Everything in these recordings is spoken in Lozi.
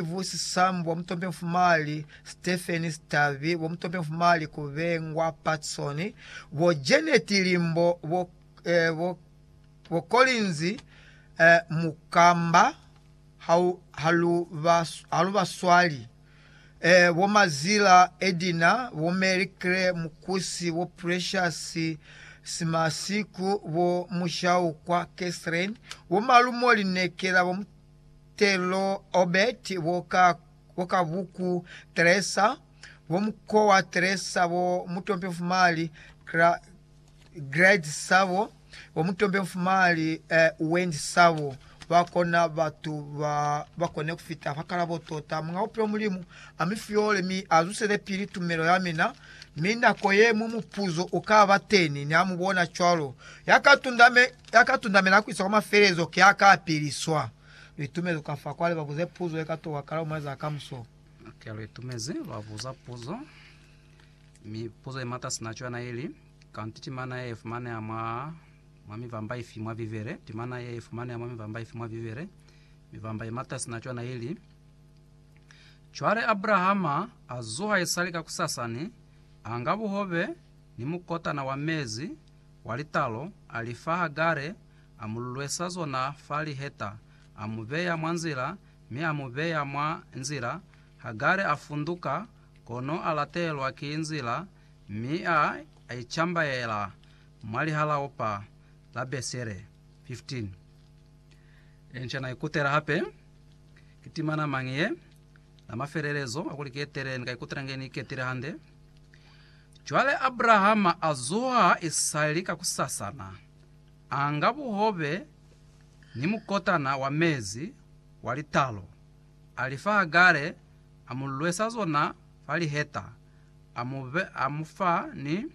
Steve Sisambu wa Mutombe Mfumali, Stephen Sitavi wa Mutombe Mfumali, Kubengwa Patson, bo Janet Limbo, bo, eh, bo, bo Collins eh, Mukamba hau, halu, ba, halu baswali eh, bo Mazila Edina, bo Mary Claire Mukusi, bo Precious Simasiku, bo Mushaukwa Catherine, bo Malumo Linekela, bo Telo, Obert, bo ka, bo ka buku Teresa, bo mukowa Teresa, bo mutompe mfumali Gra, Grade sabo, bo mutompe mfumali eh, Wendy sabo. Ba kona batu ba ba kone ku fita fa kalabo tota Muñ'a Bupilo Mulimu. A mi fyole mi a zusele pili tumelo ya mina. Mi nako ye ñwi mupuzo u ka ba teni, ni ha mu bona cwalo. Ya ka tunda me. Ya ka tundamela ku isa kwa mafelelezo ki ya ka piliswa. Lu itumezi ka fa kwa li ba buze puzo ye ka tokwahala mwa za kamuso. Ki lu itumezi lwa buza puzo, mi puzo ye mata sina cwana ili, Kanti ki mana ye fumaneha mwa mwa mivamba ifi mwa Bibele? Ki mana ye fumaneha mwa mivamba ifi mwa Bibele? Mivamba ye mata sina cwana ili, Cwale Abrahama a zuha isali kakusasani, a nga buhobe ni mukotana wa mezi, wa litalo, a li fa Hagare, a mu lulwesa zona fa liheta, a mu beya mwa nzila, mi a mu beya mwa nzila. Hagare a funduka, kono a latelwa ki nzila, mi a icambaela mwa lihalaopa la Besere. 15. Inca na ikutela hape, Ki timana mañi ye? Na mafelelezo a kuli ki etele, ni ka ikutela inge ni iketile hande. Cwale Abrahama a zuha ha i sa li kakusasana, a nga buhobe ni mukotana wa mezi wa litalo, a li fa Hagare, a mu lwesa zona fa liheta, a mu be, a mu fa ni,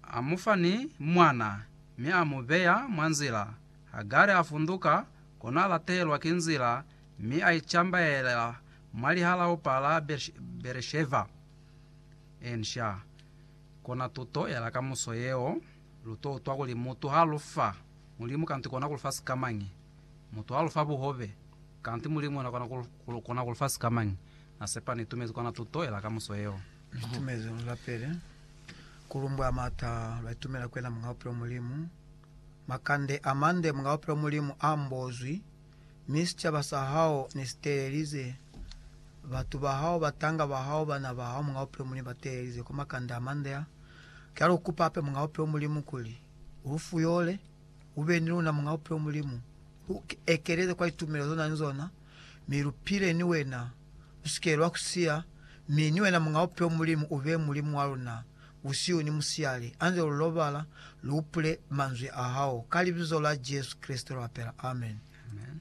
a mu fa ni mwana, mi a mu beya mwa nzila. Hagare a funduka, kono a latelwa ki nzila Mi a icambaela mwa lihalaupa la Beresheva. Inca, kona tuto ya la kamuso yeo, lu to utwa kuli mutu ha lu fa Mulimu kanti kona ku lu fa sikamañi. Mutu ha lu fa buhobe, kanti Mulimu yena kona ku lu fa sikamañi. Na sepa ni itumezi kona tuto ya la kamuso yeo. Ni itumezi lu lapele, ku lumbwa mata, lwa itumela ku yena Muñaupilo Mulimu. Makande a mande Muñaupilo Mulimu a mbozwi. mi sicaba sa hao ne si teelelize, batu ba hao, batanga ba hao, bana ba hao, Muñ'a Bupilo Mulimu, ba teelelize kwa makande a mande a. Cwale u kupa hape, Muñ'a Bupilo Mulimu, kuli U lu fuyole, u be ni luna, Muñ'a Bupilo Mulimu, lu ekeleze kwa litumelo ze lu na ni zona, mi lu pile ni Wena, lu si ke lwa ku siya, mi ni Wena, Muñ'a Bupilo Mulimu, u be Mulimu wa luna. busihu ni musiyali, anze lu lobala, lu upule manzwi a hao, ka Libizo la Jesu Kreste lu apela. Amen. Amen.